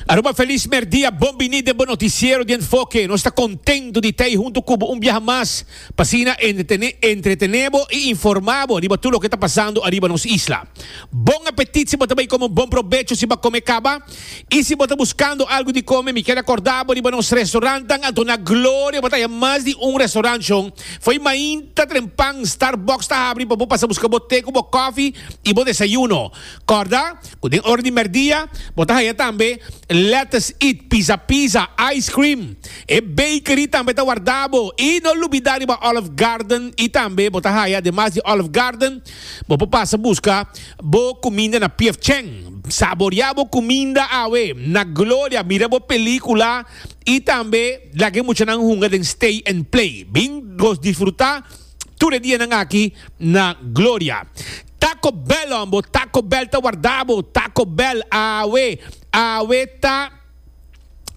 Aruba Feliz Merdia, bon bini den bo noticiero di enfoke. Nos ta contento di ta ei hunto cu bo un biaha mas, pa asina entretene bo y informa bo riba tur loke ta pasando ariba nos isla. Bon apetit si bo ta bay come un bon probecho si bo a come caba. Y si bo ta buscando algo di come, mi kier acorda bo riba nos restaurantnan anto na Gloria bo ta haya mas di un restaurantshon. Fo'i mainta trempan, Starbucks ta habri pa bo pasa busca bo te cu bo coffee y bo desayuno. Kòrda ku den ora di mèrdia bo ta haña tambe Lettuce It, Pizza Pizza, Ice Cream. E bakery tambe ta wardá bo. I no lubidá riba Olive Garden i tambe bo ta haña demas di Olive Garden bo por pasa buska bo kuminda na Pief Cheng. Saboriá bo kuminda awe na gloria, mira bo pelíkula i tambe laga e muchanan hunga den Stay and Play. Bin gos disfrutá tur e dianan aki na gloria. Taco Bell hombo Taco Bell ta warda bo Taco Bell awe awe ta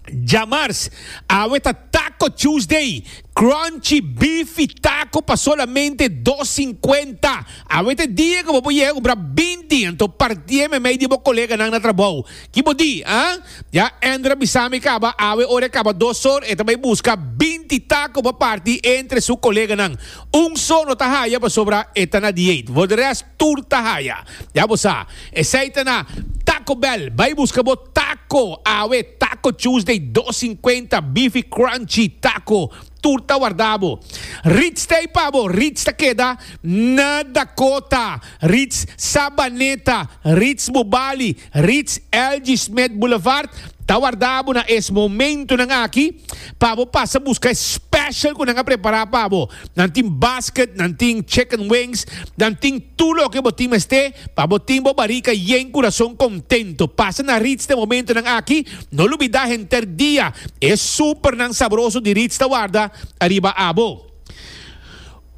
Djamars awe ta Taco Tuesday crunchy bifi taco pa solamente dos cincuenta awe ta e dia cu bo por yega cumbra binti anto parti'e memey di bo coleganan na trabou ki bo di ah ya Andrew a bisami caba awe ora e caba dos or e ta bay busca binti taco pa parti entre su coleganan. Un so no ta haya pasobra e ta na diate, for de res tur ta haya. Ya bo sa, esey ta na Taco Bell, bay busca bo taco, awe Taco Tuesday dos cincuenta, beefy crunchy taco, tur ta warda bo. Ritz t'ey pa bo, Ritz ta keda na Dakota, Ritz Sabaneta, Ritz Bubali, Ritz Elgie Smith Boulevard ta warda bo na es momentunan aki pa bo pasa buska e special ku nan a prepara pa bo. Nan tin basket, nan tin chicken wings, nan tin tur loke bo tin mester pa bo tin bo barika yen kurason kontento. Pasa na Ritz den momentunan aki, no lubida henter dia e supernan sabroso di Ritz ta warda ariba abo.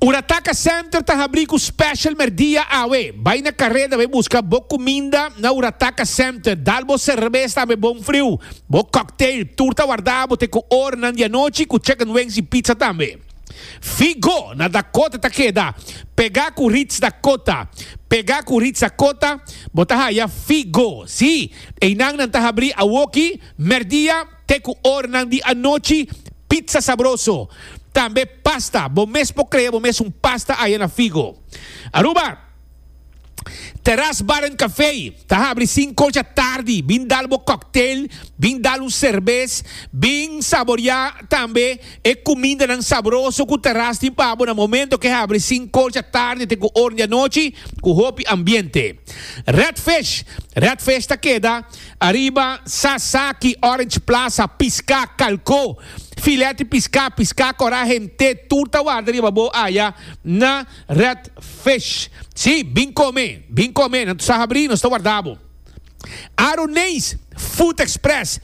Ora Taka Center ta habrí ku special merdia awe, bai na karé tambe buska bo kuminda na Ora Taka Center, dal bo serbes tambe bon friu, bo cocktail, tur ta wardá abo te ku oranan di anochi ku chicken wings i pizza tambe. Figo na Dakota ta keda pegá ku Ritz Dakota, pegá ku Ritz Dakota bo ta haya Figo, sí, einan nan ta habrí awoki merdia. te ku oranan di anochi pizza sabroso, tambe pasta, bo mes por krea bo mes un pasta aya na Figo. Aruba, Terras Bar and Café ta habri sinku ocha tardi, bin dal bo cocktail, bin dal un serbes, bin saboria tambe e kumindanan sabroso ku Terras tin pa bo na momento ke habri sinku ocha tardi te ku ornan di anochi ku hopi ambiente. Red Fish, Red Fish ta keda Ariba Sasaki, Orange Plaza, piská, kalkó, filèt di piská, piská korá, hent'é, tur ta warda riba bo aya na Red Fish. Sí, bin kome, bin kome, nan ta sa habrí, nos ta warda bo. Aruneis Food Express,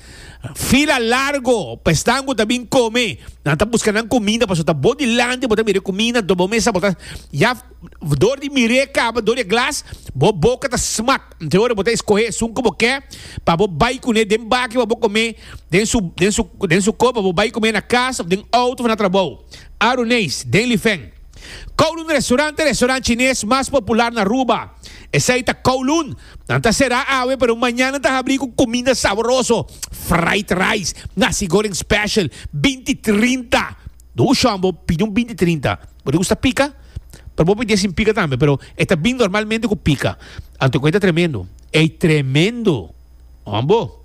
fila largo pa esnan ku ta bin kome, nan ta buska nan kuminda, pasobra ta bo dilanti, bo ta mir'é kuminda, dor bo mesa, bo ta ya dor di mir'é kaba, dor di e glas, bo boka ta smak. Te ora bo ta escohe esun cu bo ke pa bo bay cune den baki pa bo come den su copa, bo bay come na casa of den auto of na trabou. Aru Nees, den Lifen. Kowloon Restaurant e restaurant Chines mas popular na Aruba. Esey ta Kowloon. Nan ta cera awe pero mañan nan ta habri cu cuminda saboroso, fried rice, nasi goreng special, binti trinta. Bo ushon bo pidi un binti trinta. Bo ta gusta pika? Pero bo pidi e sin pika tambe, pero e ta bin normalmente ku pika. Anto ku ei ta tremendo? Ei tremendo! Hon bo?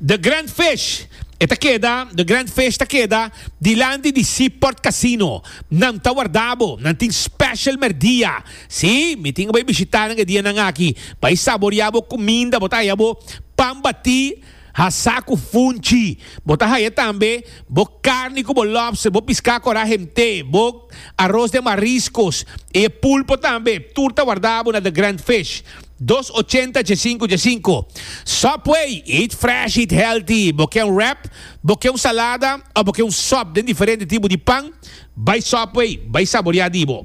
The Grand Fish e ta keda, The Grand Fish ta keda dilanti di Seaport Casino. Nan ta warda bo. Nan tin special merdia. Sí, mi tin ku bai bishita nan e dianan aki. Bai saboria bo kuminda. Bo ta haya bo pan batí. Hasa ku funchi. Bo ta haña tambe bo karni ku bo lòbster, bo piská ku a ra hemt'é, bo aros den mariskos i e pulpo tambe. Tur ta wardabo na The Grand Fish. Dos ochenta dje sinku dje sinku. Subway, eat fresh, eat healthy. Bo ke un rap, bo ke un salada òf bo ke un sòp den diferente tipo di pan? Bai Subway, bai saboriá di bo.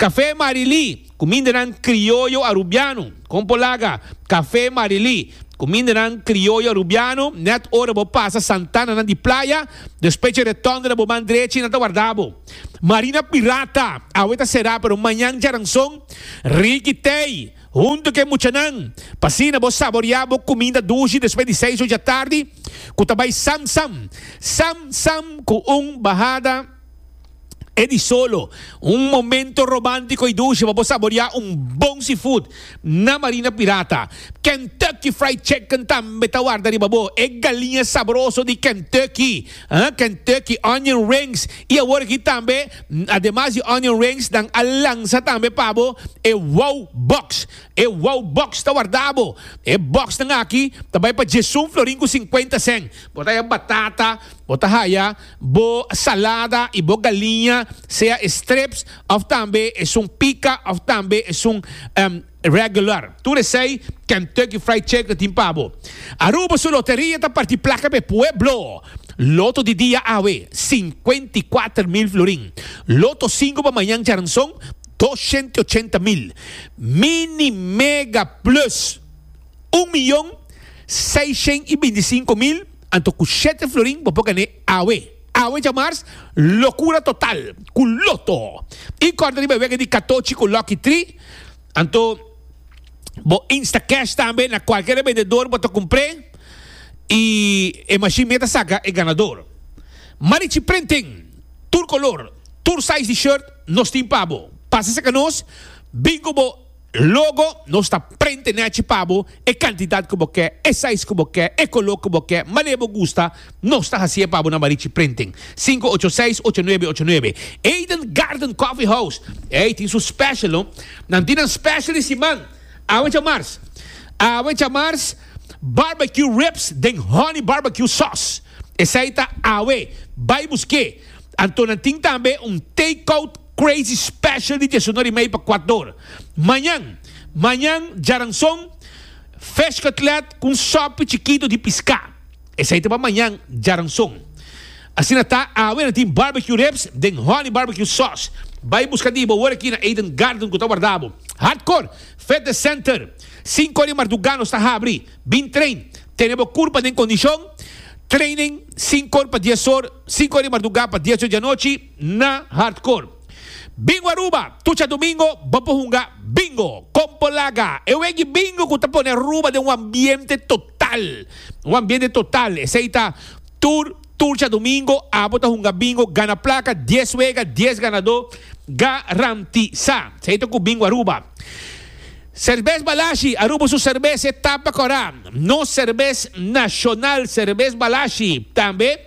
Kafé Marilí. Kumindanan krioyo arubiano, kon por laga, kafé marilí, kumindanan krioyo arubiano, nèt ora bo pasa Santananan di playa, despues dje retònde na bo man drechi nan ta warda bo. Marina Pirata, awe ta será pero mañan djaranson, Ricky Tey, huntu ku e muchanan, p'asina bo saboriá bo kuminda dushi despues di seis ocho atardi, ku ta bai sam sam, sam sam ku un bahada. E di solo, un momento romantico y dulce pa bo saborea un bon seafood na Marina Pirata. Kentucky Fried Chicken tambe ta warda riba bo, e galiña sabroso di Kentucky, Kentucky Onion Rings y awor aki tambe ademas di Onion Rings nan a lansa tambe pa bo e Wow Box. E Wow Box ta warda bo. E box nan aki ta bay pa Jesun florin cu cincuenta cent. Bo ta haya batata, bo ta haya. bo salada y bo galiña sea e strips of tambe esun pica of tambe esun regular. Tur esey Kentucky Fried Chicken tin pa bo. Aruba su loteria ta parti placa p'e pueblo. Loto di dia awe, cincuenta y cuater mil florin. Loto cinco pa mañan djaranzon, doshent y ochenta mil. Mini Mega Plus, un miyon, seishent y binti cinco mil. Anto ku shete florin bo por gané awe. Awe dja mars, lokura total ku loto i kòrda riba e wega di katochi ku lòki tri. Anto bo Instacash tambe na kualkier e bendedor bo ta kumpr'é i e mashin mia ta saka e ganador. Marichi Printing, tur kolor, tur size di shirt nos tin pa bo. Pasa seka nos, bingo bo. Logo nos ta prente nechi pa bo e kantidat ku bo ke, e sais ku bo ke, e koló ku bo ke, mané bo gusta, nos ta hasié pa bo na Barichi Printing, sinku ocho seis ocho nuebe ocho nuebe. Eden Garden Coffee House, ey tin su special no. Nan tin nan special di siman, awe djamars, awe djamars barbecue ribs den honey barbecue sauce, esei ta awe, bai busk'é. Anto nan tin tambe un take out. Crazy Special di dies uno rimei pa kuat dor. Mañan, Mañan Djaranson, Fish Cutlet ku un sopi chikito di piská. Esei ta pa mañan Djaranson. Asina ta, awe nan tin Barbecue Ribs den Honey Barbecue Sauce. Bai buska di bo wor aki na Eden Garden ku ta warda bo. Hardcore Fitness Center, sinku ora di marduga nos ta habri. Bin train, tene bo kurpa den kondishon. Training, sinku or pa dies or, sinku ora di marduga pa dies or di anochi. na Hardcore. Bingo Aruba, Tucha Domingo bo por hunga Bingo, Compo Laga, e wegi Bingo cu ta pone Aruba den un ambiente total, un ambiente total, esey ta tur Turcha Domingo, abo ta hunga Bingo, gana placa, dies wega, dies ganador, ga-ran-ti-sa, esey ta cu Bingo Aruba. Serbes Balashi, Aruba su serbes e tapa cora, nos serbes nacional, serbes Balashi, tambe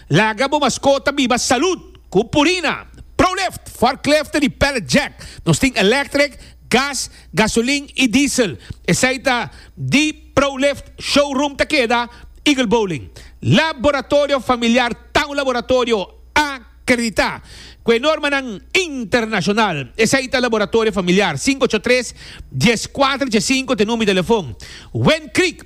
Laga bo maskota biba salud ku Purina, ProLift, forklift di pallet jack. Nos tin elektrik, gas, gasolin i diesel. Esei ta di ProLift showroom ta keda Eagle Bowling. Laboratorio familiar ta un laboratorio akreditá ku e normanan internashonal. Esei ta Laboratorio Familiar, sinku ocho tres, dies kuater, dies sinku, te number di telefon. Windcreek.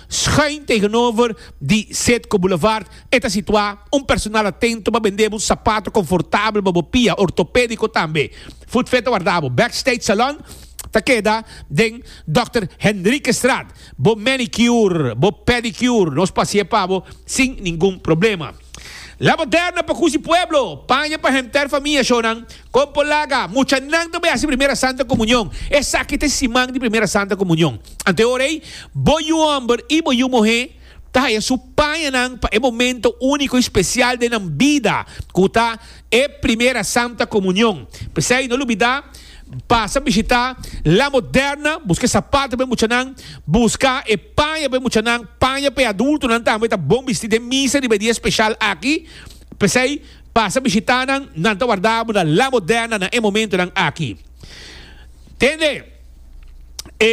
Schuin tegenover di Citgo Boulevard e ta situá un personal atento pa bendebo un sapato confortabel pa bo pia, ortopédico tambe. Footfit ta wardá bo Backstage Salon ta keda den Dòkter Henriquestraat. Bo manicure, bo pedicure nos pa haci'e pa bo sin ningun problema. La moderna pa kusi pueblo, paña pa henter famia, shownan. Kon por laga? Muchanan ta bai hasi Primera Santa Komunion. Esaki ta e siman di Primera Santa Komunion. Anteor ei, bo yu hòmber i bo yu muhé ta haya su pañanan pa e momento úniko i spesial den nan bida, ku ta e Primera Santa Komunion. P'esei, no lubidá pasa bishitá La Moderna, buska e sapatu pa e muchanan, buska e paña pa e muchanan, paña pa e adultonan tambe ta bon bistí den misa riba e dia speshal aki. P'esei. Pasa bishitá nan, nan ta wardá muda La Moderna na e momentonan aki. Tende, e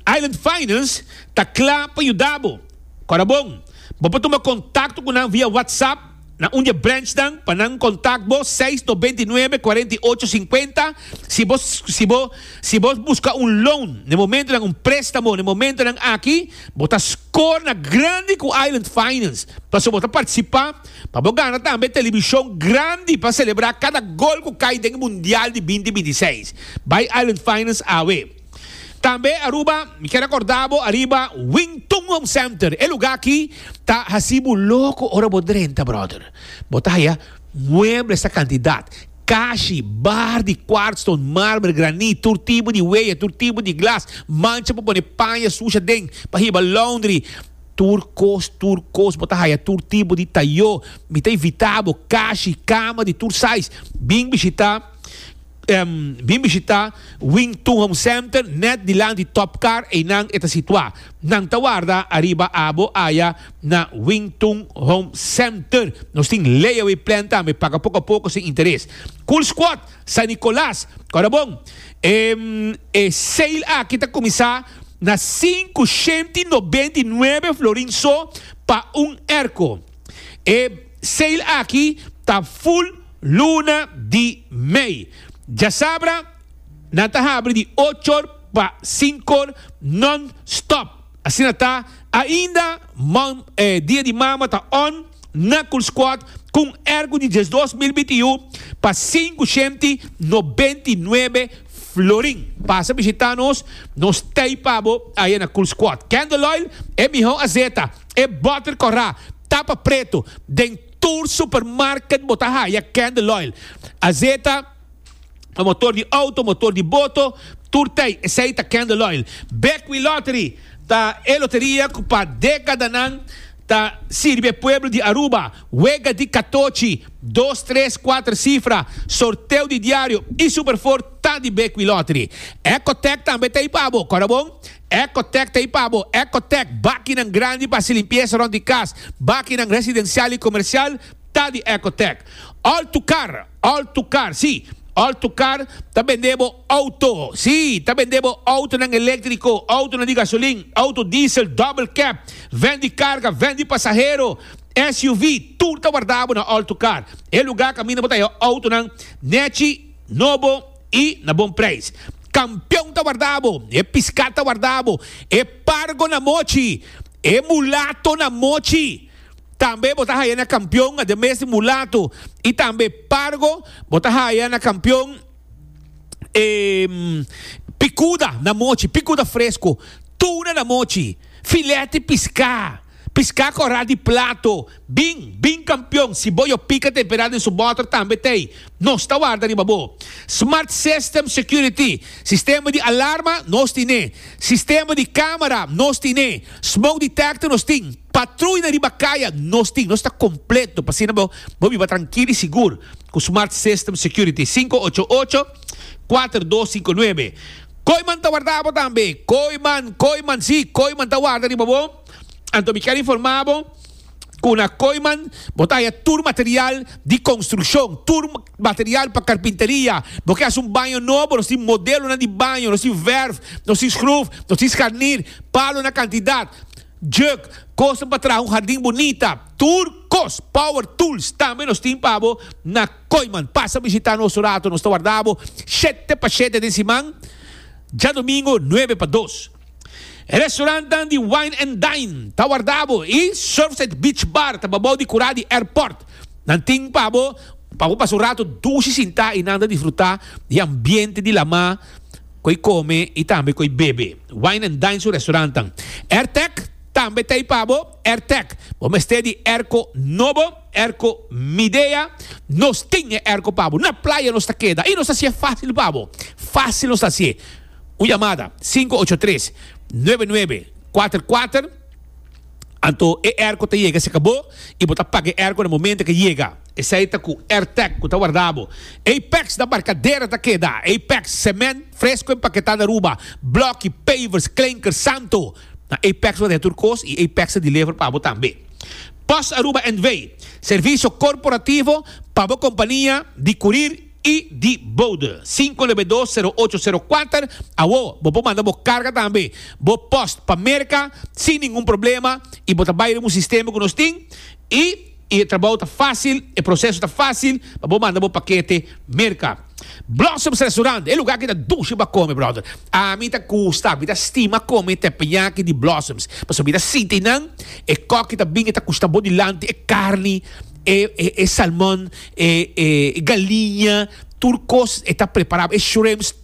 Island Finance ta kla pa yuda bo. Kora bon, bo por tuma kontakto ku nan via WhatsApp na un di e branchnan pa nan kontak bo seis nobenta i nuebe kuarenta i ocho sinkuenta si bo si bo si bo buska un loan na e momentonan, un préstamo na e momentonan aki. Bo ta skor na grandi ku Island Finance pasobra bo ta partisipá. Pa bo gana tambe telebishon grandi pa selebrá kada gol ku kai den e Mundial di binti binti seis. Bai Island Finance awe. Tambe Aruba, mi kier akordá bo ariba Wing Tun Home Center. E lugá aki ta hasi bo loko ora bo drenta, brother. Bo ta haya muebles ta kantidat, kashi, bar di kwartston, marmer, granit, tur tipo di weya, tur tipo di glas, mancha pa pone paña susha den, pa hiba laundry. Tur kos, tur kos, bo ta haya tur tipo di tayo. Mi ta invita bo, kashi, kama di tur size. Bin bishita, em, bin bishita Wing Tun Home Center net dilanti Top Car, einan e ta situa. Nan ta warda ariba abo aya na Wing Tun Home Center. Nos tin layaway plan tambe, paga poko a poko sin interes. Cool Squad, San Nicolas, Corabon, em, e sale aki ta kuminsá. na sinku shent i nobent i nuebe florin so pa un erko. E seil aki ta ful luna di mei. Djasabra nan ta habri di ochor pa sinkor non stop. Asina ta ainda Dia di Mama ta on na Kulskuad ku un erko di diesdos mil bintiun pa sinku shent i nobent i nuebe Florin, pasa bishita nos, nos tei pa bo aye na Cool Squad. Candle Oil, e miho azeta, e butter corra, tapa preto, den tur supermarket bo ta haya Candle Oil. Azeta pa motor di auto, motor di boto, tur tei esey ta Candle Oil. Bekwilottery ta e loteria cu pa decadanan. ta sirbi e pueblo di Aruba, wega di katochi, dos, tres, kuater sifra, sorteo di diario y super for ta di Bequi Lottery. Ecotec tambe ta ey pa bo, kora bon? Ecotec ta ey pa bo, Ecotec, bakinan grandi pa haci limpieza rond di cas, bakinan residencial y comercial ta di Ecotec. All to car! Alto Car, Sí, Alto Car ta bend'é bo auto. Sí, ta bend'é bo autonan eléktriko, autonan di gasolin, auto diesel, double cab, vèn di karga, vèn di pasahero, SUV, tur ta wardá bo na Alto Car, e lugá kaminda bo ta haya autonan nèchi, nobo i na bon preis. Kampion ta wardá bo, e piskat ta wardá bo, e pargo na mochi, e mulato na mochi. Tambe bo ta haya na kampion a demestre mulatu i tambe pargo bo ta haya na kampion e pikuda na mochi, pikuda fresku, tuna na mochi, fileti piská, piská kòrá di plato, bin, bin kampion, si bo yo pika temperá den su bòter tambe t'ei, nos ta warda riba bo. Smart System Security, sistema di alarma, nos tin'é. Sistema di kámara, nos tin'é. Smoke detector nos tin. Patrui na riba kaya nos tin, nos ta kompleto pa asina bo bo biba trankil i sigur ku Smart System Security sinku ocho ocho, kuater dos sinku nuebe. Kooiman ta warda bo tambe. Kooiman, Kooiman, si, Kooiman ta warda riba bo. Anto mi ker informá bo ku na Kooiman bo ta haña tur material di konstrukshon, tur material pa karpinteria. Bo ke hasi un baño nobo, nos tin modelonan di baño, nos tin vèrf, nos tin skruf, nos tin skarnir, palo na kantidat. Jug, kosnan pa traha un hardin bunita, tur kos, power tools, tambe nos tin pa bo na Koiman. Pasa bishita nos un ratu, nos ta warda bo shete pa shete den siman, djadomingo nuebe pa dos. Restaurantnan di Wine and Dine ta warda bo i Surfside Beach Bar ta babou di kura di airport. Nan tin pa bo pa bo pasa un ratu dushi sintá i nanda disfrutá di ambiente di lamá. koe kome i tambe koe bebe. Wine and Dine su restaurantan. Airtec tambe ta ei pa bo. Airtec, bo mester di airco nobo, airco Midea. Nos tin e airco pa bo. Na playa nos ta keda i nos ta haci'e facil pa bo. Facil nos ta haci'e. Un yamada sinku ocho tres nuebe nuebe kuater kuater anto e airco ta yega cerca bo i bo ta paga e airco na momento ke yega. Esei ta ku Airtech ku ta warda bo. Apex na Barkadera ta keda. Apex, Sement fresko empaketá na Aruba, Blòki, Pavers, Klenker, Santo. Na Apex bo deha tur kos i Apex ta deliver pa bo tambe. Pos Aruba NV, Servisio korporativo pa bo kompania di kurir i di boude. Sinku lebe dos, sero ocho, sero kuater, Awo bo por manda bo karga tambe, bo post pa Merka sin ningun problema i bo ta bai riba un sistema ku nos tin i. I e trabou ta fásil, e proseso ta fásil, pa bo manda bo pakete Merka. Blossoms Restaurant, e lugá ki ta dushi pa kome, bròder. Ami ta gusta, mi ta stima kome tèpèñaki di Blossoms, pasobra mi ta sinti nan, e kòk ki ta bin e ta kushta bo dilanti, e karni, e, e, e salmòn, e, e galiña, tur kos e ta prepará bo, e shrimps.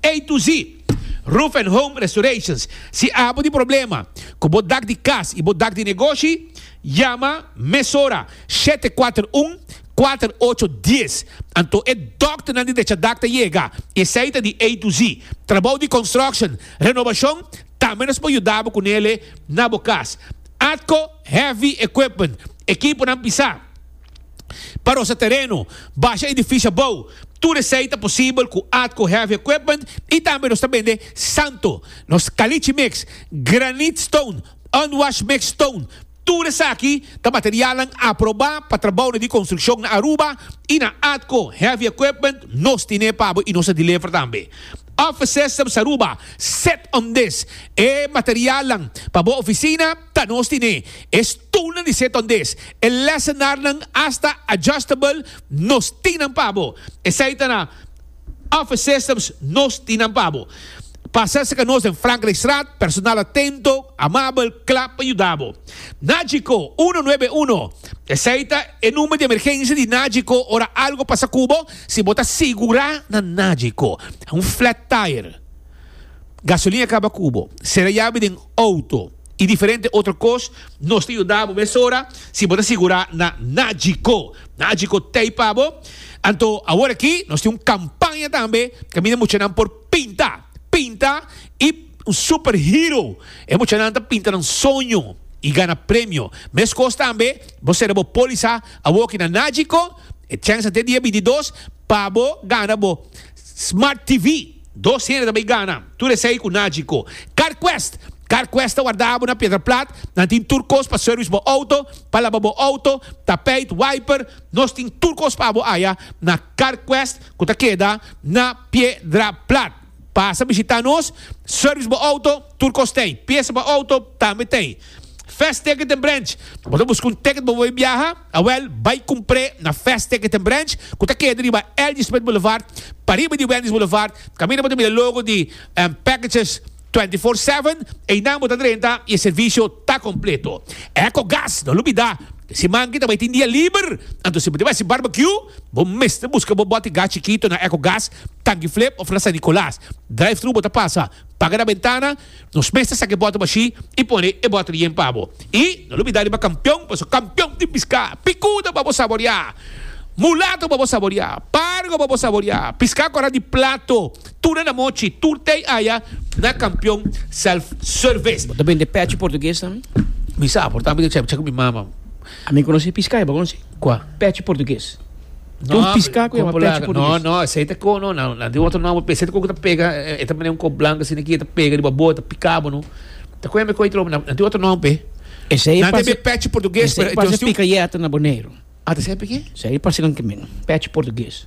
A to Z, Roof and Home Restorations, Si abo di problema ku bo dak di kas i bo dak di negoshi, yama mesora shete kuater un, kuater ocho dies. Anto e dòkternan di Dechadak ta yega. Esei ta di A to Z. Trabou di construction, renobashon, tambe nos por yuda bo ku nele na bo kas. Atco Heavy Equipment, Ekiponan pisá. pa rosa tereno, basha edifisio abou. Tur esei ta posibel ku Atco Heavy Equipment i tambe nos ta bende santo, nos kalichi mix, granit stone, unwashed mix stone. Tur esaki ta materialnan aprobá pa trabounan di konstrukshon na Aruba i na Atco Heavy Equipment nos tine pa bo i nos a diliver tambe. Office Systems Aruba, set on this e materialnan pa bo ofisina. Ta nos tin e e stoelnan di set on des e lesenarnan asta adjustable nos tin nan pa bo esai ta na office systems nos tin nan pa bo pasa serka nos den Frankrijkstraat personal atento amabel kla pa yuda bo Nagico uno nuebe uno esai ta e number di emergensia di Nagico ora algo pasa cu bo si bo ta sigura na Nagico un flat tire. Gasolina caba cu bo, cera yabi den auto y diferente otro cos nos ta yuda bo mesora si bo ta sigura na Nagico. Nagico tey pa bo. Anto awor aki nos tin un campaña tambe caminda muchanan por pinta, pinta y un super hero. E muchanan ta pinta nan soño y gana premio. Mescos tambe bo cera bo poliza awor aki na Nagico, e chance te dia bintidos pa bo gana bo. Smart TV, dos hende ta bay gana, tur esey cu naci co. CarQuest, CarQuest ta warda abo na Piedra Plat, nan tin tur cos pa service bo auto, pa laba bo auto, tapijt, wiper, nos tin tur cos pa abo aya na CarQuest cu ta keda na Piedra Plat. Pasa bishita nos, service bo auto, tur cos tey, piesa pa auto tambe tey. Fast Ticket and Branch. Bo ta buska un ticket bo por biaha? Awel, bai kumpr'é na Fast Ticket and Branch, ku ta keda riba L.G. Smith Boulevard, pariba di Wendy's Boulevard. Kaminda bo ta mira logo di Packages 24/7, einan bo ta drenta i e servisio ta kompleto. Echo Gas, no lo bida, den siman kita bai tin dia liber, anto si bo ta bai hasi barbecue, bo mester buska bo bòt di gas chikito na Echo Gas, Tanki Flip òf na San Nicolas. Drive-thru bo ta pasa, paga na bentana. Nos mes ta saki bòter mashí i pone e bòter yen pa bo. I no lo bidá riba kampion, paso kampion tin piská. Pikuda pa bo saboriá. Mulato pa bo saboriá. Pargo pa bo saboriá. Piská kòrá di plato. Tuna na mochi. Tur tei aya na kampion self-service. Bo ta bende pèchi portugues tambe? Mi sa, por tanto mi ta chèk chèk ku mi mama. Ami conoci pisca, y bo conoci? Cua? Pechi portugues. Tin un pisca cu yama Como pechi laga? No, portugues. no, esei ta ko, no, nan, nan tin otro nomber p'e. Esei ta ko ku ta pega, e, e ta mane un ko blanca asina ki, e ta pega riba bo, e ta pika bo, no. Ta ko yama e koi trobo, nan, nan tin otro nomber p'e. Esei Nan ta pase, be pechi portugues, pero esei e pase dios tin un... picayeta na Boneiru. Ah, ta esei p'e ke? Esei pase nan kimin, pechi portugues.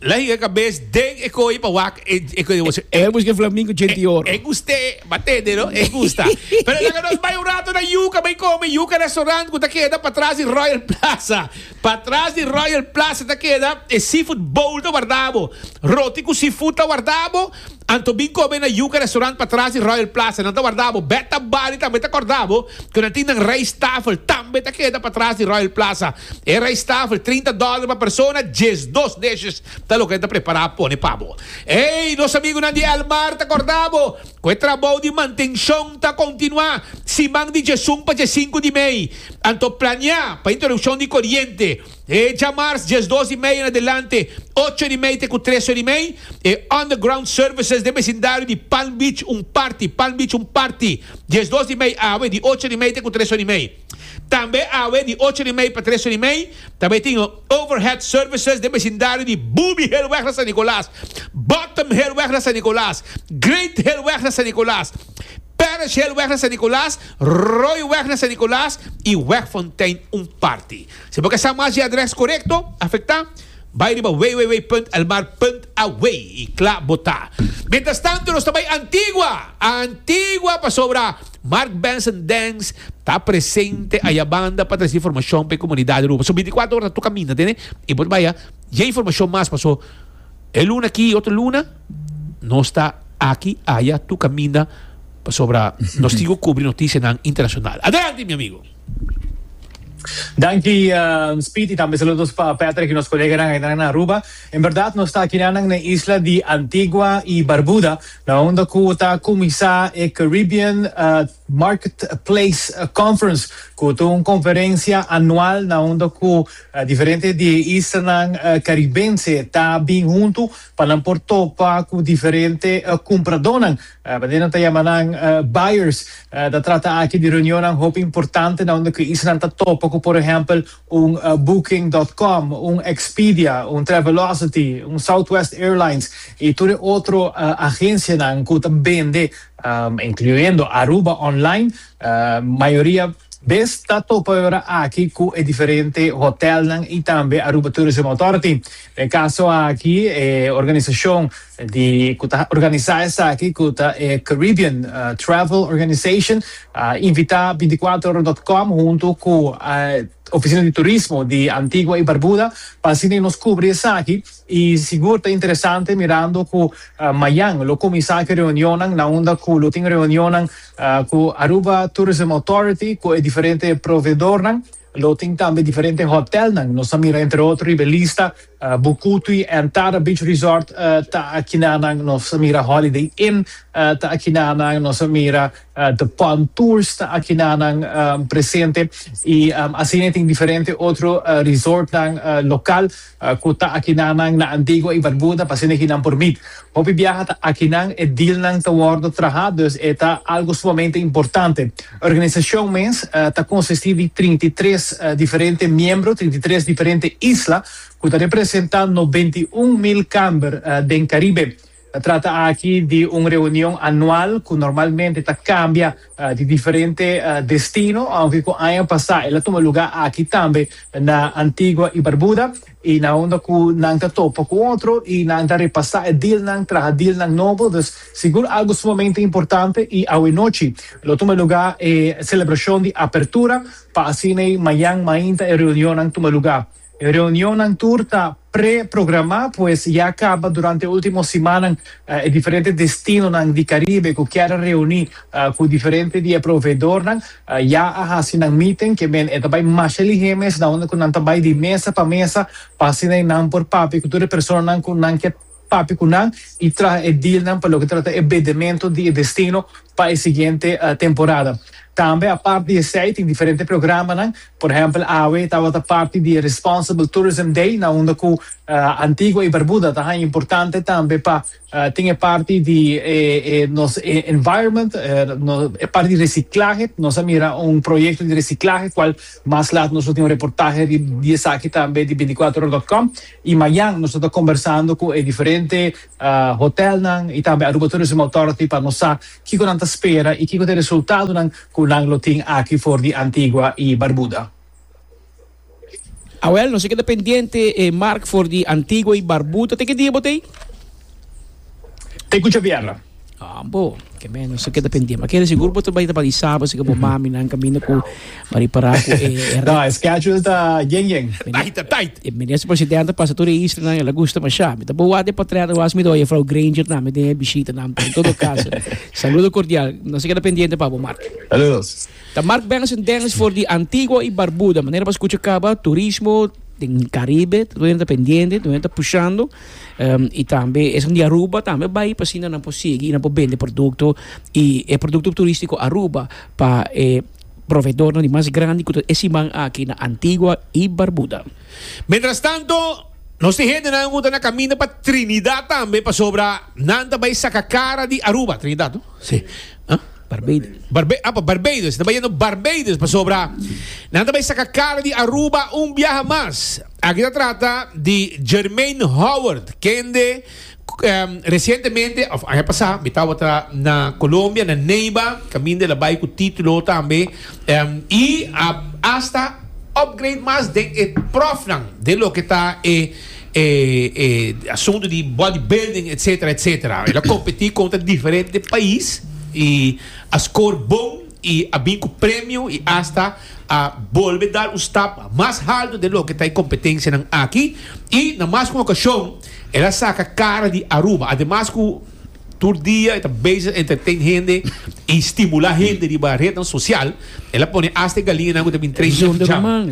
Lei e kabes den e koi pa wak e koi di boso. E buska e flamingo djenti di oro. E guste, m'a tende no? E gusta. Pero laga nos bai un rato na Yuka bai komi. Yuka restaurant ku ta keda patras di Royal Plaza. Patras di Royal Plaza ta keda e seafood bowl ta warda bo. Roti ku seafood ta warda bo. Anto bin come na Yuca Restaurant patras di Royal Plaza nan ta warda bo beta bal y tambe ta corda bo cu nan tin nan rijsttafel tambe ta keda patras di Royal Plaza e rijsttafel trinta dollar pa persona djes dos dishes ta loke nan ta prepara pone pa bo ey nos amigunan di El Mar ta corda bo cu e trabou di mantencion ta continua siman di dje sung pa dje sinku di mey anto planea pa introduccion di coriente Hecha mars diesdos i mei en adelante, ocho or i mei te ku tres or i mei, e Underground Services den besindario di Palm Beach un parti, Palm Beach un parti, diesdos i mei awe di ocho or i mei te ku tres or i mei. Tambe awe di ocho or i mei pa tres or i mei ta bai tin Overhead Services den besindario di Booby Hillweg na San Nicolas, Bottom Hillweg na San Nicolas, Great Hillweg na San Nicolas, Parish Hillweg na San Nicolas, Royweg na San Nicolas i Wegfontein un parti. Si bo ke sa mas di adres korekto afektá, bai riba www.elmar.aw i kla bo ta. Mientras tanto nos ta bai Antigua! Antigua pasobra Mark Benson Dance ta presente ayabanda pa trese informashon pa e komunidat Aruba. So bintikwatro ora ta tur kaminda, tende? I bo ta bai a dje informashon mas paso e luna aki i otro luna nos ta aki aya tur kaminda pasobra nos tin ku kubri notisianan internashonal. Adelante mi amigo! Danki uh, Speed y tambe saludos pa Patrick y nos coleganan ainan na Aruba. En verdad nos ta aquí nan na isla di Antigua y Barbuda, na unda cu ta cuminsa e Caribbean uh, Marketplace uh, Conference, cu ta un conferencia anual na unda cu uh, diferente di e islanan uh, caribense ta bin hunto pa nan por topa cu diferente uh, cumpradornan Paden nan ta yama nan buyers. Ta trata aki di reunionnan hopi importante na unda ku esnan ta topa ku por ehèmpel un Booking dot com, un Expedia, un Travelocity, un Southwest Airlines i tur e otro agensianan ku ta bende, incluyendo Aruba Online. Mayoria bes ta topa e ora aki ku e diferente hotèlnan i tambe Aruba Tourism Authority. Na e kaso aki e organisashon di cu ta organiza esaki cu ta e Caribbean Travel Organization a invita binticuater ora dot com hunto cu Oficina di Turismo di Antigua y Barbuda pa asina nos cubri esaki y sigur ta interesante mirando cu mayan lo cuminsa cu e reunionnan na unda cu lo tin reunionnan cu Aruba Tourism Authority cu e diferente proveedornan lo tin tambe diferente hotelnan nos a mira entre otro riba e lista Bukutu y Entada Beach Resort ta aki na nan, nos a mira Holiday Inn ta aki na nan, nos a mira The Palm Tours ta aki na nan presente y asina e tin diferente otro resortnan local cu ta aki na nan na Antigua y Barbuda pa asina ki nan por meet. Hopi biaha ta akinan e dealnan ta wòrdu trahá, dus e ta algu sumamente importante. Organisashon mes ta konsistí di trinta i tres diferente miembro, trinta i tres diferente isla, ku ta representá nobenta i un mil kamber den Karibe. Ta trata aki di un reunion anual ku normalmente ta kambia. di diferente destino, aunke cu aña pasá el a tuma lugá aki tambe na Antigua y Barbuda, y na unda cu nan ta topa cu otro y nan ta repasá e dealnan, traha dealnan nobo. Dus sigur algo sumamente importante y awe nochi lo tuma lugá e celebracion di apertura pa asin'ei mañan mainta e reunionnan tuma lugá. E reunionnan tur ta pre-programá pues ya kaba durante e último simannan e diferente destinonan di Caribe ku kier a reuní ku diferente di e proveedornan ya a hasi nan meeting. Ke men e ta bai masha lihé mes na unda ku nan ta bai di mesa pa mesa pa asina nan por papia ku tur e personanan ku nan ke Papi cu nan y traha e dealnan pa loke trata e bedemento di e destino pa e siguiente temporada. Tambe apart di esey tin diferente programanan, por ehempel awe tabata parti di e Responsible Tourism Day na unda cu Antigua y Barbuda ta haña importante tambe pa tin e parti di e nos e environment, e parti di reciclahe, nos a mira un proyecto di reciclahe cual mas laat nos lo tin un reportahe riba di esaki tambe di binticuatrohora dot com. I mañan nos ta ta kombersando ku e diferente hotelnan i tambe Aruba Tourism Authority pa nos sa kiko nan ta spera i kiko ta e resultadonan ku nan lo tin aki for di Antigua i Barbuda. Awèl, nos a keda pendiente e mark for di Antigua i Barbuda. Te ke dia bo ta ei? Te ku Xavier. Ah, bo, que menos se queda pendiente. Aquele seguro botou baita para sábado, se que bo mami nan camino com para parar com eh Da, schedule ta yen yen. Tight ta tight. E minister presidente passa toda isla nan ela gusta masha. Mi ta bo wak de patrera was mi ta oye vrouw Granger nan mi den e bishita nan en todo caso. Saludo cordial. No se queda pendiente pa bo Mark. Saludos. Ta Mark Benson Dennis for di Antigua y Barbuda. Manera pa scucha caba turismo den Caribe. Todo hende ta pendiente, todo hende ta pushando. Um, y tambe esnan di Aruba tambe bai pa asina nan por sigui y nan por bende producto y e producto turistico Aruba pa e proveedornan di mas grandi cu ta e siman aki na Antigua y Barbuda. Mientras tanto, nos tin hendenan cu ta na caminda pa Trinidad tambe pasobra nan ta bai saca cara di Aruba, Trinidad no? Si. Huh? Barbados. Nan bai yendo Barbados pasobra nan ta bai saka kara di Aruba un biaha mas. Aki ta trata di Jermaine Howard, kende um, resientemente, of aña pasá, mi tabata na Colombia, na Neiba, kaminda el a bai ku título tambe, um, i a hasta upgrade mas den e pròfnan den loke ta e e e asunto di body building etc etc el a competi contra diferente pais y a score bon y a bin cu premio y hasta a bolbe dar un stap mas halto den loke ta e competencianan aki y na mas un ocasion el a saca cara di Aruba ademas cu Tur dia e ta bezig entertain hende y stimula hende riba rednan social. El a pone hasta e galiñanan cu ta bin train den pijama.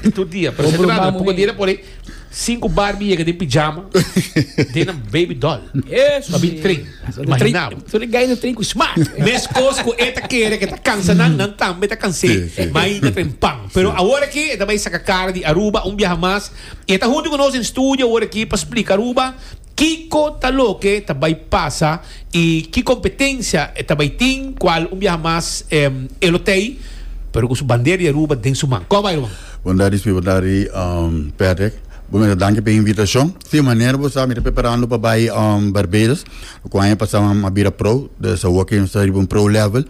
Tur dia, pero sento nan, poko dia el a pone cinco Barbie yega den pijama den nan baby doll pa bin train. Imagina bo. Tur e gainan train cu smart. Mescos cu e ta kere cu e ta cansa nan, nan tambe ta cans'é, ma e yinda train pan. Pero awor aki e ta bay saca cara di Aruba un biaha mas y e ta hunti cu nos den studio awor aki pa splica Aruba. Kiko ta loke ta bai pasa y ki competencia e ta bai tin cual un biaha mas e lo tey pero cu su bandera di Aruba den su man. Con a bai Ruben? Bondadi si bondadi Patrick. Bo mester danki pa e invitacion. Si, manera bo sa mi ta preparando pa bai Barbados. Cu aña pasa mi a bira pro, de Sawakin ta riba un pro level.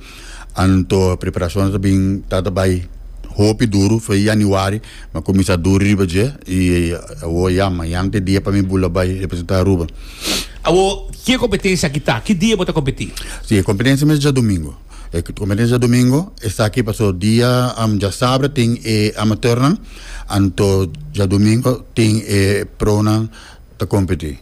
Anto preparacionnan ta bin tata bay hopi duru fue Januari ma cuminsa duri riba dje y awo ya mañan ta e dia pa mi bula bay representa Aruba. Awo ki competencia aki ta? Ki dia bo ta competi? Si e competencia mes dja domingo. E competencia dja domingo esaki paso dia djasabra tin e amateurnan anto dja domingo tin e pronan ta competi.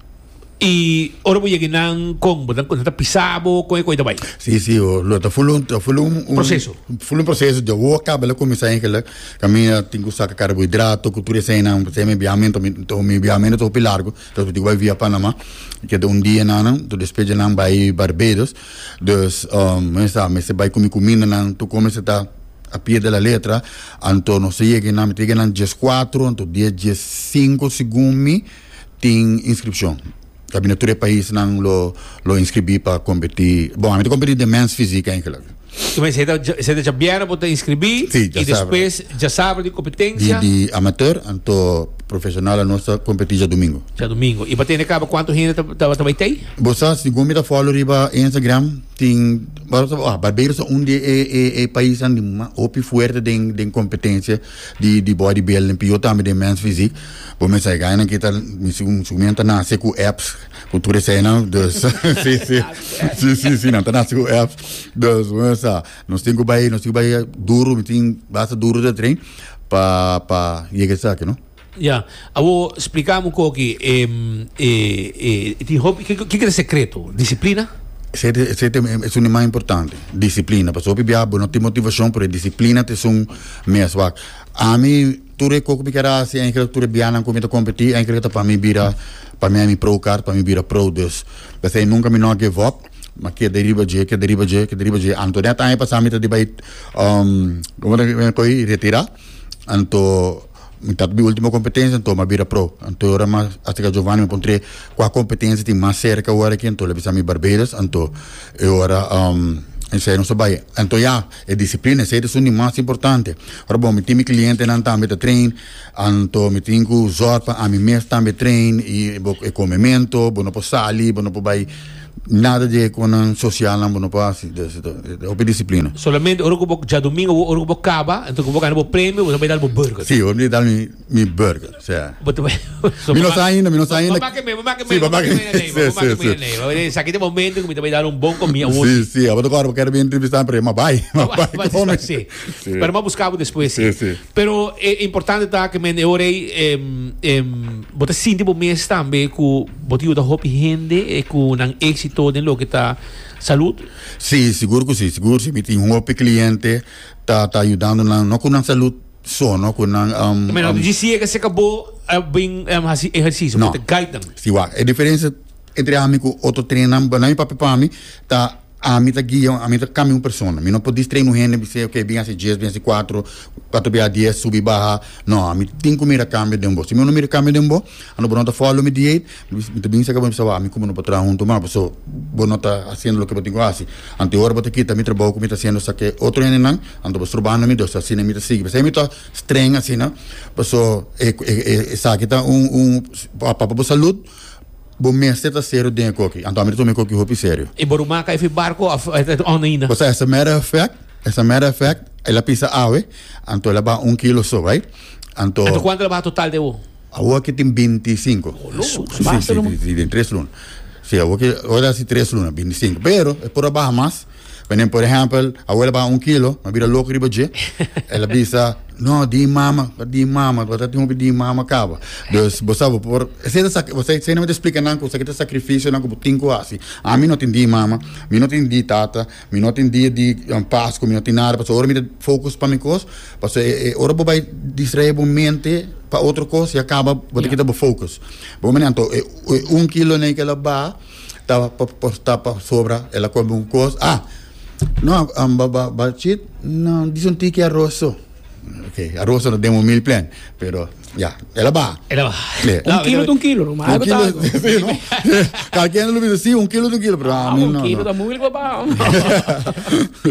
Y ora bo yega nan con bo nan ta pisa bo con e cua y ta bay. Sí, sí, oh, lo ta full un, ta full un, un Proceso. Full un proceso. Dia wo acaba la comenzá eigenlijk. Caminda tin cu saca carbohidrato, cu tur eseinan, porque mi viamento, mi, to, mi viamento ta hopi largo, después tin cu bay via Panama. Keda un dia nan, to después dje nan bay Barbados. Dus, um, mester, mester bay cu mi cumindanan, tur cos mester ta a pie de la letra. Anto nos ta yega nan, mi ta yega nan diescuatro, anto dia diescinco segun mi, tin inskripshon. Ta bini tur e paisnan lo lo inskribí pa kompetí. Bon, ami ta kompetí den mens físik einkelijk. Tu mester e ta dja e ta dja bièrnè bo ta inskribí Sí, i djasabra. despues djasabra di Di kompetensia di amateur anto profeshonal anos ta kompetí dja dumingu. dja dumingu. I pa tene kaba kuantu hende ta ta ta bai t'ei? Bo sa segun mi ta fòlo riba Instagram tin Barbeiros ta un di e e e paisnan di ma hopi fuerte den den kompetensia. Di di bo a di bel den pio tambe den mens fisi bo mester hay gainan kita mi si un su mian ta nase ku apps ku tur eseinan dus si si si si si nan ta nase ku apps dus bo mester sa nos tin ku bai nos tin ku bai duru mi tin basta duru ta tren pa pa yega esaki no. Ya, awor spliká amo ku oki e e e e tin hopi ke ke kere sekreto? Disiplina? Esei te esei te e esun di mas importante, disiplina. Pasobra hopi bia bo no tin motivashon, pero e disiplina ta esun mes wak. Ami, tur e ko ku mi keda hasi, e engelsk tur e bianan ku mi ta kompetí, engelsk ta pa mi bira, pa mi a mi pro kar, pa mi bira pro. Dus, p'esei nunka mi no a give up, mi a keda riba dje, keda riba dje, keda riba dje. Anto nèt aña pasá mi ta di bai komo ta koi, retirá. Anto Mi tap di ultimo competencia anto ma bira pro anto ora ma hasta ca Giovanni mi pon tre cua competencia tin mas cerca ora aki anto lo bisa mi Barbados anto e ora esey nos a bay anto ya e disciplina esey ta sun di mas importante ora bon mi tin mi clientenan tambe ta train anto mi tin cu zorg pa ami mes tambe train y bo e comemento bo no por sali bo no por bay Nada di e konan sosialnan bo no por hasi, ta hopi disiplina. Solamente ora ku bo djadumingu bo ora ku bo kaba, anto ku bo gana bo premio, bo ta bai dal bo burger. Si, bo ta bai dal mi burger, sí. Bo ta bai. Mi no sa ainda, mi no sa ainda. Bo make mei, bo make mei, bo make mei anei, bo make mei anei. Bo ta bai, esaki ta e momento ku mi ta bai dal un bon komia awor si. Sí, sí, abo ta kòrda bo kèr a bin entrevistá mi, pero e m'a bai, m'a bai kome. Sí, pero m'a buskabo despues si. Sí, sí. Pero e importante ta cu men e ora ey bo ta sinti bo mes tambe cu bo ta yuda hopi hende cu nan exito den loke ta salud? Sí, sigur cu sí, sigur si. Mi tin hopi cliente ta ta yudando nan, no cu nan salud so, no cu nan um, Ta mira, um, dje si e ke seka bo a bin em hasi ehercicio, bo no. ta guide nan. Sí, wak, e diferencia entre ami cu otro treinnan, nan mi papia pa mi ta. Ami ta guia, ami ta cambia un persona. Mi no por distrae un hende bis'e ok bin haci dies, bin haci cuatro, cuatro bia dies, subi baha. No, ami tin cu mira cambio den bo. Si mi no mira cambio den bo, ando bo no ta follow mi dieet, mi ta bin seca bo mi bisa bo, ami cu bo no por traha hunto mas paso bo no ta haciendo loke bo tin cu haci. Anto ora bo ta kita mi trabao cu mi ta haciendo sa ke otro hendenan, anto bo strobando mi, dus asina mi ta sigui. P'esei mi ta streng asina, paso e esaki ta un, un, apa pa bo salud. Bo mester ta serio den e koki. Anto ami ta tuma e koki hopi serio. Y bo ruma ka efi barco of e ta on ainda? Pues as a matter of fact, as a matter of fact, el a pisa awe, anto el a baha un kilo so, right? Anto. Anto cuanto el a baha total de awo? Awo aki tin binti i sinku. Oh, lo. Su, su basta, no? Si, si, si, den tres luna. Si, awo aki, awo ta hasi tres luna, binti i sinku. Pero, e por a baha mas. Wenen por ehempel, abuela baha un kilo, a bira loco riba dje. El a bisa, no, di mama, pa di mama, bo ta tin hopi di mama caba. Dus, bo sa, bo por, esei ta sac, esei esei no mester explica nan cu sa ki ta sacrificionan cu bo tin cu haci. Ami no tin di mama, mi no tin di tata, mi no tin dia di Pascu, mi no tin nada, pasobra ora mi ta focus pa mi cos, pasobra e, e, ora bo bai distrae bo mente pa otro cos ya caba, bo ta kita bo focus. Bo mira, anto e, e un kilonan e ki el a baha. Ta porta pasobra el a come un cos. Ah, no, um, ba, ba, ba chit, no, dis un tiki arroz so. Ok, arroz no den un meal plan, pero ya, el a ba. Era ba. Yeah. Un kilo ta un kilo, no, maar Un kilo, betago. sí, no? Cualquier no lo dice, sí, un kilo de un kilo, pero a Ah, mí un no, kilo ta no. moeilijk pa ba.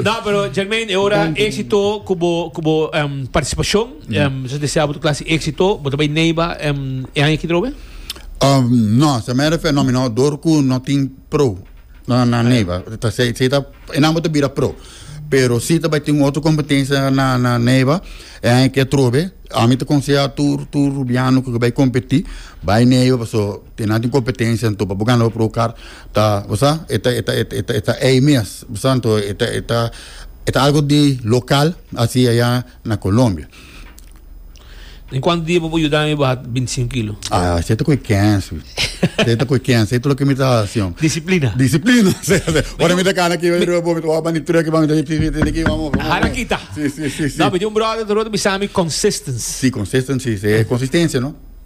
Da, pero Jermaine, e ora éxito cubo, cubo em, participación. Em, so desea boto clase éxito, boto bay neiba em e aña aquí drobe? Um, no, se me refer no, mi no dor ku no tin pro na na neiba. Ta se se ta enan boto bira pro. Pero si ta bay tin otro competencia na na neiba, e aña ke trobe, ami ta conseha tur tur rubiano ku ke bay competi, bay neiba paso enan tin competencia anto pa bo gana bo pro kar ta bosa eta eta eta eta eta ei mes, bosa anto eta eta eta algo di local asi aya na Colombia. Den cuanto dia bo por yuda mi baha binticinco kilo? Ah, esey ta cu e kensi. Esey ta cu e kensi. Esey ta loke mi ta haci, hombre. Disciplina. Disciplina. Esey ta haci. Ora mi ta cana aki, mi ta bo, mi ta wak bani truck, mi ta tiki, mi ta tiki, vamos, vamos. Hara kita. Sí, sí, sí, sí. No, mi tin un brother ta rota bisa mi, consistence. Sí, consistence, sí. Consistencia, no?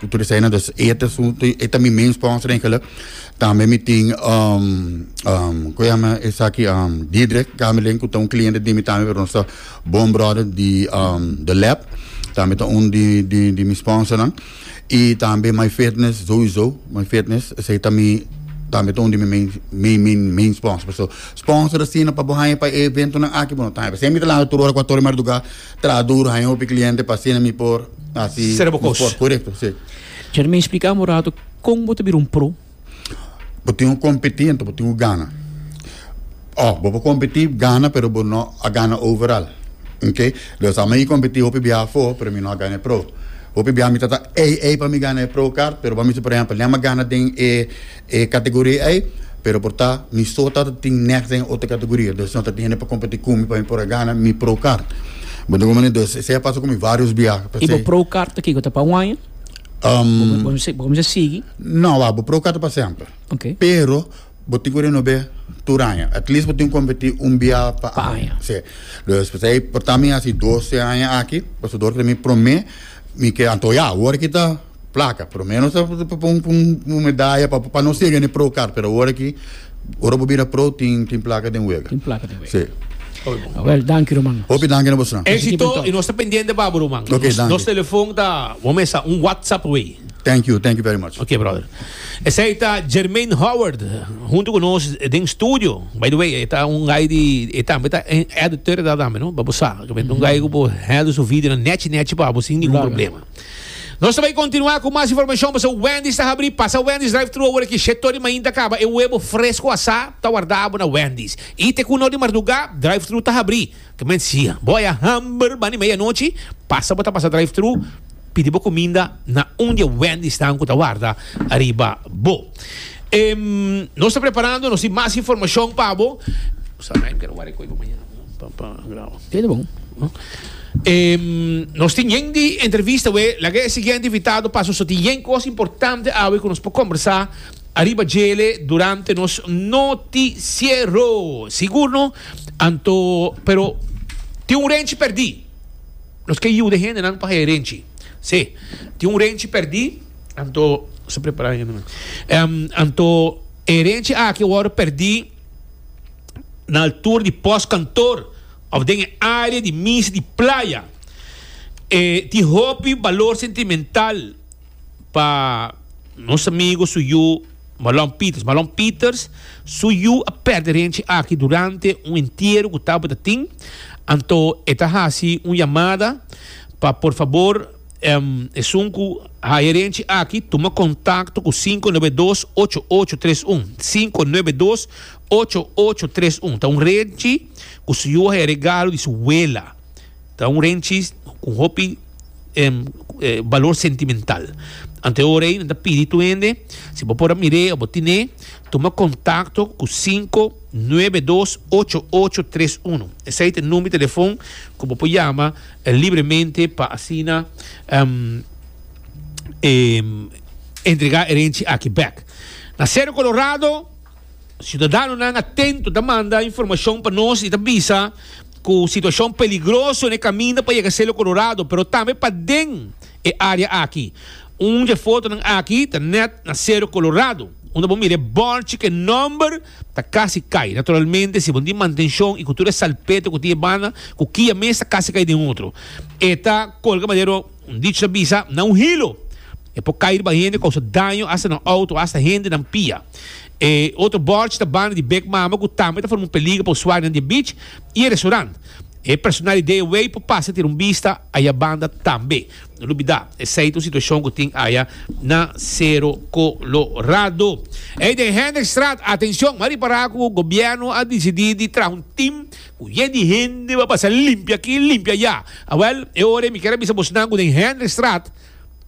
Cu tur esai nan dus e asunto y eta mi men spons rinkelen. Tambe mi tin, um, um, cu llama esaki, um, Diedrich Gamelin, cu ta un cliente di mi tambe, pero nos ta bon brother di, um, The Lab. Tambe ta un di, di, di mi sponsor nan. Y tambe My Fitness, Zoe Zo, My Fitness, esai ta mi, tambe ta un di mi main, main, main, main sponsor. So, sponsor asina pa bo haya pa e eventonan aki, bueno, tambe. Esai mi ta lansa tur ora cu a Tony Marduga Traha duru, haña hopi kliente pa asina mi por hasi mi por korekto, si. Jeremia, i spliká mi un ratu kon bo ta bira un pro? Bo tin ku kompetí, anto bo tin ku gana. Aw, bo por kompetí, gana, pero bo no a gana overal. Ok? Dor sa mi kompetí hopi biaha afó, pero mi no a gana e pro. Hopi biaha mi ta ta ei ei pa mi gana e pro kart, pero pa mi si por ehèmpel, mi a gana den e e categoria ey, pero por ta mi so ta tin next den e otro categoria, dus no ta tin hende pa competi cu mi pa mi por a gana mi pro kart. Bo ta comprende? Dus esey a pasa cu mi varios biaha, Y bo pesey. pro kart ta kico? Ta pa un aña? Um, Bo bo cominsá sigui? no, wak, bo pro kart ta pa semper, Oké. pero bo tin cu renove tur aña, at least bo tin cu competi un biaha pa Pa aña, aña. sí. Dus pesey por ta mi haci doce aña aki, pasobra mi prome mi ke anto ya, awor aki ta. Placa, por lo menos ta ta pon un un un medalla pa pa no sega ne pro car, pero ora aki ora bo bira pro tin tin placa den wega. Tin placa den wega. Sí. Oy bo. Awel, danki ruman. Hopi danki na bosonan. Nos ekipo Exito, i ntòg. nos ta pendiente pa bo ruman. Oké, Nos danki. nos telefon ta bo mesa un WhatsApp wey. Thank you, thank you very much. Oké brother. Esei ta Jermaine Howard huntu ku nos den studio. By the way, e ta un guy di e tambe ta en editor ta tambe no, pa bo sa. Kibende un guy ku por hende su video nèchi nèchi pa bo sin ningun Larga. problema. Nos ta bai kontinuá ku mas informashon pasá Wendy's ta habrí. Pasa Wendy's drive-thru awor aki shet tori mainta a kaba. E webo fresko asá ta wardabo na Wendy's. I te ku un or di mardugá drive-thru ta habrí. Kement si bo a ya hamber bani media anochi, pasa bo ta pasa drive-thru pidi bo kuminda na un di e Wendy's nan ku ta warda ariba bo. Nos ta preparando, nos tin mas informashon pa bo. Hele bon. Nos tin yen di entrevista we. Laga e siguiente invitado pa su tin yen cos importante awe cu nos por combersa ariba djele durante nos noticiero. Sigur no? Anto, pero tin un renchi perdi. Nos ke yuda e hendenan pa hae e renchi. Sí, tin un renchi perdi, anto, sta prepara hende. Anto, e renchi aki awor perdi. na altura di pòstkantoor òf den e área di misa di playa. E tin hopi balor sentimental pa nos amigu su yu Malon Peters. Malon Peters su yu a pèrdè renchi aki durante un entiero ku tabata tin, anto e ta hasi un yamada pa por fabor Esun cu haya renti aki, tuma contacto cu cinco nuebe dos ocho ocho tres un, cinco nuebe dos ocho ocho tres un. Ta un renti cu su yu a haya regalo di su wela. Ta un renti cu hopi balor sentimental. Antehoor ey, nan ta pidi tur hende, si bo por a mir'e o bo tin'e, tuma contacto cu cinco nuebe dos ocho ocho tres un. Esey ta e number di telefon cu bo por yama. libremente pa asina entregá e renchi aki bèk. Na Sero Kolorado, siudadanonan atento ta manda informashon pa nos i ta bisa ku situashon peligroso n'e kaminda pa yega Sero Kolorado, pero tambe paden e área aki. Un di e fotonan aki ta nèt na Sero Kolorado, unda bo mira e bòrchi ku e nòmber. Ta casi cay. Naturalmente, si bo di mantenshon y cu tur e salpeto cu tin e banda, cu kia mes ta casi cay den otro. E ta colga madero, un dich ta bisa, na un hilo. E por cay riba hende, causa daño hasta na auto, hasta hendenan pia. E otro borchi ta banda di Bek Mama, cu tambe ta forma un peligro pa usuarionan di e beach y e restaurant. E personal di DAW por pasa tira un bista ayabanda tambe. Lubidá esei ta un situashon ku tin aya na Sero Kolorado. Ey den Hendrikstraat, atenshon, m'a ripará ku gobièrnu a disidí di traha un tim ku ye di hende pa pasa limpia akí, limpia ayá. Awèl, e ora ei mi kier a bisa bosnan ku den Hendrikstraat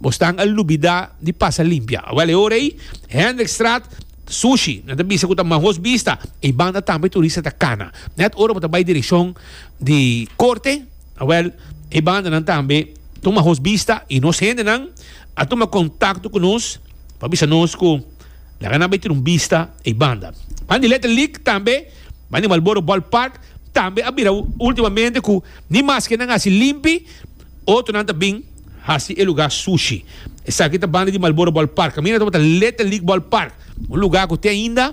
bosnan a lubidá di pasa limpia. Awèl, e ora ei Hendrikstraat ta sushi, nan ta bisa ku ta mahos bista, ei banda tambe turista ta kana. Nèt ora bo ta bai direkshon di Korte, Awel, e bandanan tambe tuma hos bista y nos hendenan a tuma contacto cu nos pa bisa nos cu laga nan bay tin un bista ey banda. Pan di Letter League tambe, pan di Marlboro Ball Park tambe a bira ultimamente cu ni mas ke nan haci limpi, otronan ta bin haci e lugar sushi. Esaki ta banda di Marlboro Ball Park. Camina ta Letter League Ball Park, un lugar cu te ainda.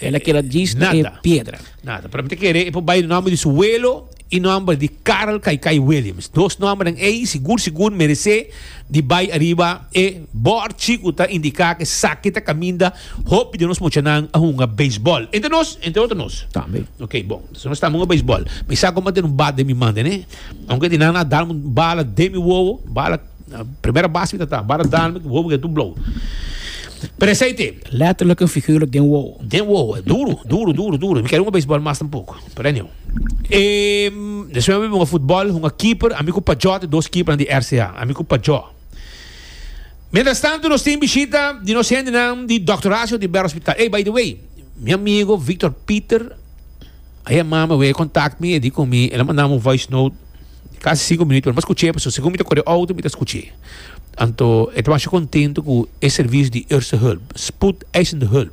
El a keda djis na e piedra. Nada. Pero mi ta kere e por bai nomber di su welo y nomber di Carl Kai Kai Williams. Dos nombernan ey sigur sigur merece di bai ariba e bordchi cu ta indica cu esaki ta caminda hopi di nos mochanan a hunga baseball. Entre nos, entre otro nos. Tambe. Ok, bon. Entonces nos ta hunga baseball. Mi sa como a den un bat den mi mande, ne. Aunque di nan a darme un bala den mi wowo, bala Na primera base mi ta ta, bara dan mi wobo ke tu blow. Pero aceite. Letterlijk en figuurlijk den wobo. Den wobo, duro, duro, duro, duro. Mi kere un baseball mas tampoco. Pero anyhow. Um, después mi bin voetbal, un keeper, a mi ku Pajó, te dos keeper di RCA. A mi ku Pajó. Mientras tanto nos tin bishita di nos hende nan di Dr. Horacio di Ber Hospital. Hey, by the way, mi amigo Victor Pieter, a yama mi, a contact mi, e di ku mi, el a manda mi un voice note. Casi cinco minuut, pero mas scuch'é, pasobra segun mi ta cor'e auto mi ta scuch'é. Anto e ta masha contento cu e servicio di Eerste Hulp, Spoedeisende Hulp,